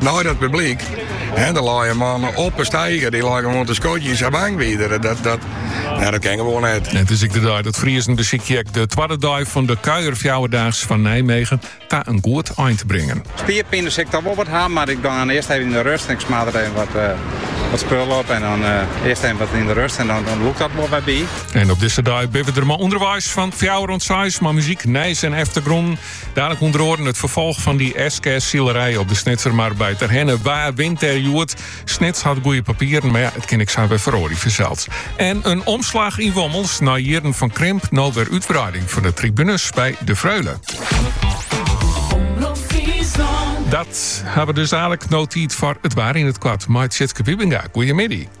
Nei dat publyk, hè, der lei in man op de steiger, die lei gewoan te skootjen yn syn bank wie der. Dat, dat, nou, dat ken gewoon net. It is ek de dei dat Friezen besykje ek de twadde dei fan de kuierfjouwerdaagse fan Nijmegen ta in goed eind bringen. Spierpine sil ik dan wel wat ha, mar ik dan earst even in de rust en ik smader even wat, eh, wat spullen op en dan eh, earst even wat in de rust en dan, dan loopt dat wel wat bij. En op dizze dei binne wy der mei Underweis fan fjouwer oant seis mei muzyk, nijs en eftergrûn. Dalik ûnder oaren it ferfolch fan de SKS-silerij op de Snitser Mar by Terherne. Wa wint der hjoed? Snits hat goede papieren, mar ja, it kin ek sa wer feroarje fansels. En in omslach yn Wommels. Nei jierren fan krimp no wer útwreiding fan de tribunes by De Freule. Dat hawwe we dus dalik. No tiid foar it waar yn it koart mei Tjitske Wiebinga. Goeiemiddy.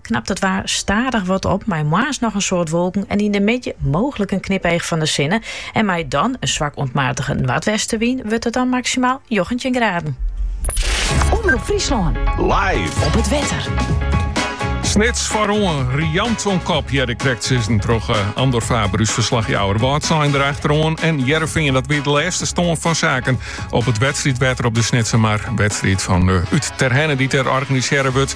Knapt it waar stadich wat op, mei moarns noch in soad wolken en yn de middei mooglik in knipeach fan de sinne en mei dan in swak oant matige noardwestenwyn wurdt it dan maksimaal njoggentjin graden. Omrop Fryslân, live op it wetter. Snits foaroan, riant oan kop hearde jo krekt sizzen troch eh, Andor Faber, ús ferslachjouwer. Wâldsein derachteroan en It Hearrenfean. Dat wie de lêste stân fan saken op it wedstriidwetter op de Snitser Mar, wedstriid fan eh, út Terherne dy't der organisearre wurdt.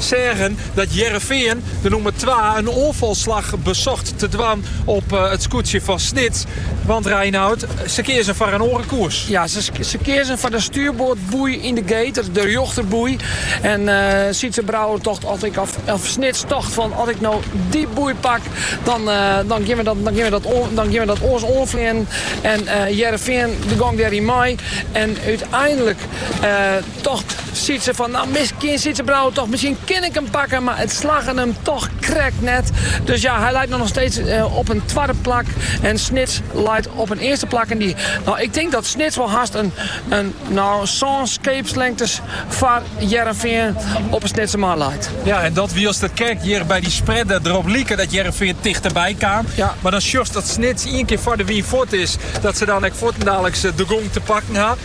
seagen dat It Hearrenfean de nûmer twa in oanfalslach besocht te dwaan op it skûtsje fan Snits. Want Reinout, se keazen foar in oare koers. Ja, se keazen foar de stjoerboardboei yn de gate, de rjochterboei. En Sytze Brouwer tocht as ik, of Snits tocht fan as ik no dy boei pak, dan gean we dat oars oanfleanen. En It Hearrenfean gong dêryn mei. En úteinlik. Tocht Sytze fan nou miskien, Sytze Brouwer tocht, miskien kin ik him pakken, mar it slagge him toch krekt net. Dus ja, hy leit noch steeds eh, op in twadde plak en Snits leit op in earste plak. En dy, nou, ik tink dat Snits wol hast in, in nou, sân skeepslengtes foar It Hearrenfean op 'e Snitser Mar leit. Ja, en dat wylst it krekt hjir by dy spreader derop like dat It Hearrenfean tichterby kaam. Ja. Mar dan sjochst at Snits ien kear foar de wyn fuort is, dat se dan ek fuortendaliks eh, de gong te pakken ha.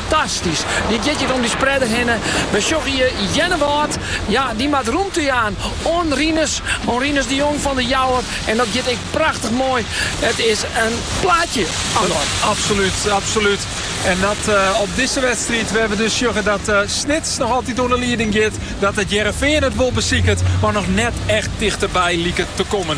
Fantastysk! Dit giet hjir om dy spreader hinne. Wy sjogge hjir Earnewâld. Ja, dy moat rûmte jaan oan Rinus, oan Rinus de Jong fan De Jouwer. En dat giet ek prachtich moai. It is in plaatsje, Andor. Absolút, absolút. En dat op dizze wedstriid, wêr't we dus sjogge dat Snits noch altyd oan 'e lieding giet, dat It Hearrenfean it wol besiket, mar noch net echt tichterby liket te kommen.